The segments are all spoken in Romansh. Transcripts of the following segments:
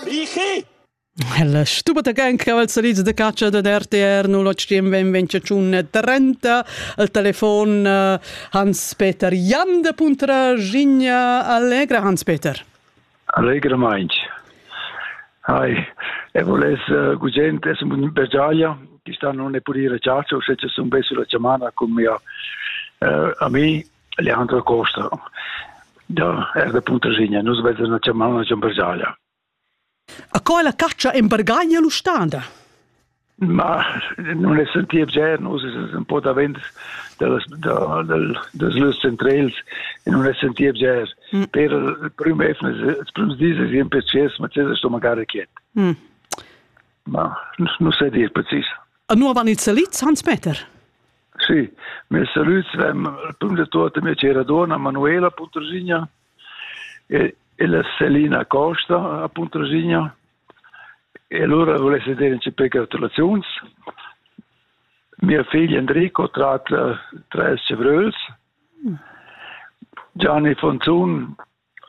Richi! La stupata cancaval salita da caccia da RTR 08 20 30 al telefon eh, Hans-Peter Jan da Puntra Gigna Allegra Hans-Peter. Allegra Mainz. Hi. E voles uh, gugent es un battaglia che sta non ne pudire ciaccio se ci sono besso la chamana con mia uh, eh, a me Leandra Costa da er da Puntaschigna. Nus vezzen la chiamar la Giambergaglia. A co la catscha in Bergaglia l'ustanda? Ma non è sentir già, nus es un po davent dals da, dal, das lös centrals e non è sentir già. Mm. Per il prim efnes, il prim dis es in precis, ma c'è sto magari quiet. Mm. Ma non sai dir precis. A nu van ils elids Hans Meter? Sì, mes salüts ven prüm da tuot la mia chera duonna Manuela Puntraschigna e e la Selina Costa a Puntraschigna e lura vulesse dire un peu gratulaziuns. Mia figlia Enrico trat uh, tres chevröls. Gianni Fonzun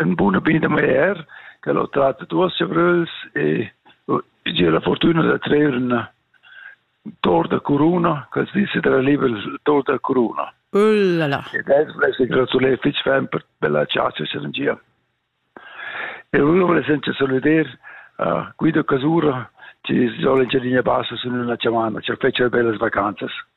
Ün bun appetit da maier, ch'el ho trat duos chavröls e gia la fortüna da trer ün tor da curuna, quels dis sü darà liber il tor da curuna. Ullala! Ed els vuless gratuler fich ferm per bella chatscha serengia. E eu vuless anche salüder a Guido Casura, chi sola in Gialigna Bassa sun üna chamana, chi fetscha bellas vacanzas.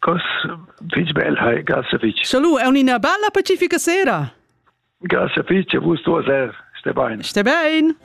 Cos fich bel, hai, grazie fich. Salud e un'ina bella pacifica sera. Grazie fich, e vus duas er. Sté bain. Sté bain.